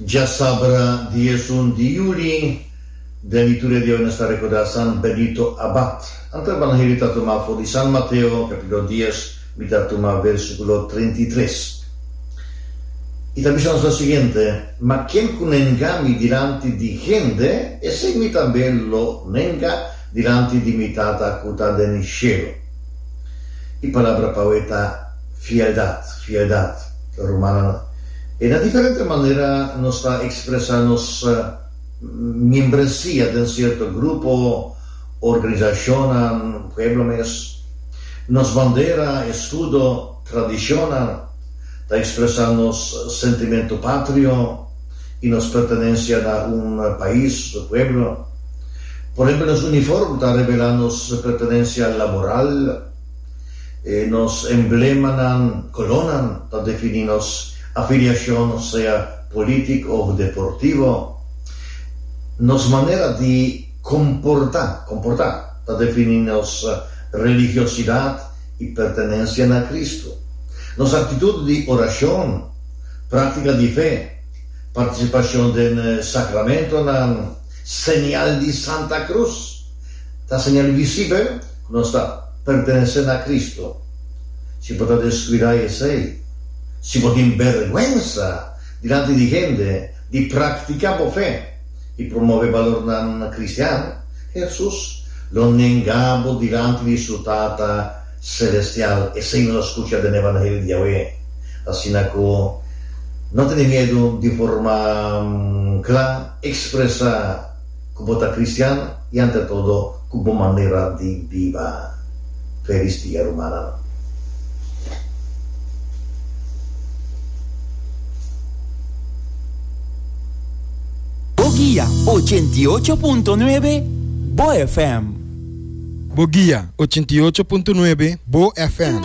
Dja sabra di esun di juli, den di tur e dia nos ta rekordá San Benito Abad. Anto e Banheliu ta tumá for di San Mateo, kapítulo dies, mi ta tumá vèrsikulo treinta i tres. I ta bisa nos lo siguiente, Ma ken ku nenga mi dilanti di hende, esei mi tambe lo nenga dilanti di mi Tata ku ta den shelu. E palabra pawe ta fieldad, fieldad, rumannan. E na diferente manera nos ta expresa nos miembresia den cierto grupo, organisacionnan, pueblo mes. Nos bandera, escudo, tradicionnan ta expresa nos sentimento patrio. y nos pertenencia na un pais o pueblo. Por ehempel, nos uniform ta revela nos pertenencia laboral. E nos emblemanan, colornan, ta defini nos afiliacion, sea politic of deportivo. Nos manera di comporta, comporta, ta defini nos religiosidad y pertenencia na Cristo. Nos actitud di oracion. Práktika di fe, partisipashon den sakramentonan, señal di Santa Krus, ta señal visibel ku nos ta pertenesé na Kristu. Si bo ta deskuidá esei, si bo tin bèrgwensa dilanti di hende di praktiká bo fe i promové balornan kristian, Hesus lo nengá bo dilanti di su Tata. Celestial, esei nos a scucha den e Evangelio di Yahweh. Asina cu no tene miedu di forma cla expresa cu bo ta cristian y ante todo cu bo manera di biba. Felis dia rumannan. Bo guia ochenta y ocho punto nuebe, bo FM. Bo guia ochenta i ocho punto nuebe Bo FM.